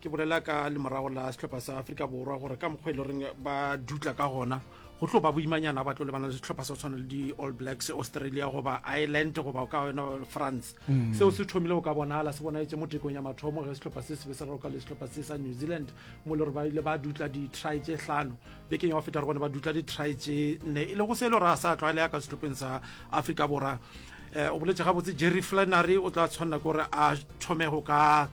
ke bolela ka lemorago la setlhopha sa aforika borwa gore ka mokgwa e le goreng ba dutla ka gona go tlo ba boimanyana ba tlo lebana le setlhopha sa tshwana le di-all blacks australia goba ireland goba ka yona france mm. seo se thomile go ka bonala se bonaetse mo tekong ya mathomo ge setlhopha se sebe se roka le setlhopha se sa new zealand mo le gore ba ile ba dutla di-try tse hlano bekeng ya go feta re bone ba dutla di-try tse nne e le go se e le gore a sa tlwaelea ka setlhopheng sa aforika borwa um o boletse gabotse jerry flannery o tla tshwanela ke gore a thome go ka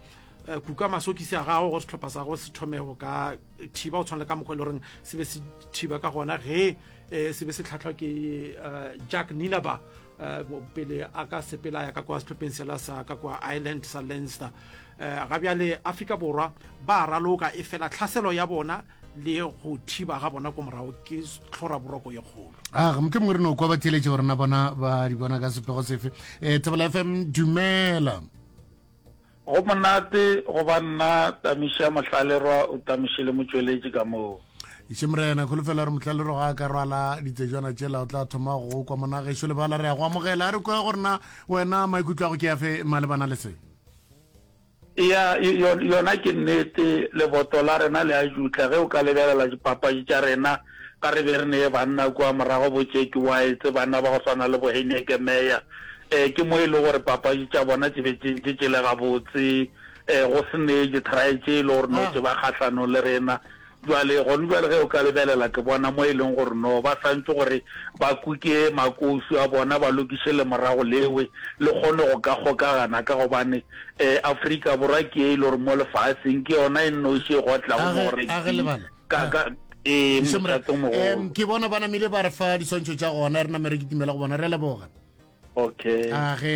Eh, kuka masokisi a gago gore setlhopha sa go se thome go ka thiba go tshwana le ka mokgwa e le goreng se be se thiba ka gona ge um se be se tlhatlhwa ke eh, jack ninaba um pele a ka sepela ya ka kwa setlhopheng sela sa ka kwa ireland sa lenster um ga bjale afrika borwa ba raloka e fela tlhaselo ya bona le go thiba ga bona ko morago ke tlhora boroko ye kgolo a ga moke mongwe re no kwa ba theeletše gore na bona ba di bona ka sepego sefe um thebela fm dumela Go monate go ba nna Tamiša Mohlallerwa o tamiše le motšweletši ka moo. Ešem Rena, kholofela gore Mohlallerwa ga a ka rwala ditsejwana tšela, o tla thoma go kwa mona gešo lebala re a go amogela. A re kwa gore na wena maikutlo a go ke afe malebana le se? Eya, yona ke nnete, leboto la rena le a jutla ge o ka lebelela dipapadi tša rena. Ka re be re ne banna kua morago bo Jackie Whites, banna ba go swana le bo Heineke Meyer, eh, ke mo e le gore papadi tša bona tše be tše ntše tše le gabotse, eh, go se ne ditry tše e le gore no tše ba kgahlanong le rena. Jwale gone jwale ge o ka lebelela ke bona mo e leng gore no ba swantše gore ba kuke makousu a bona, ba lokiše lemorago lewe le kgone go ka kgokagana ka gobane, eh, Afrika Borwa ke ye e le gore mo lefaseng ke yona e nnoši e gotlago mo go rugby. ka ka ee mosatong mogolo em ke bona ba namile ba re fa diswantšho tša gona re namere ke timela go bona re leboga okay a ge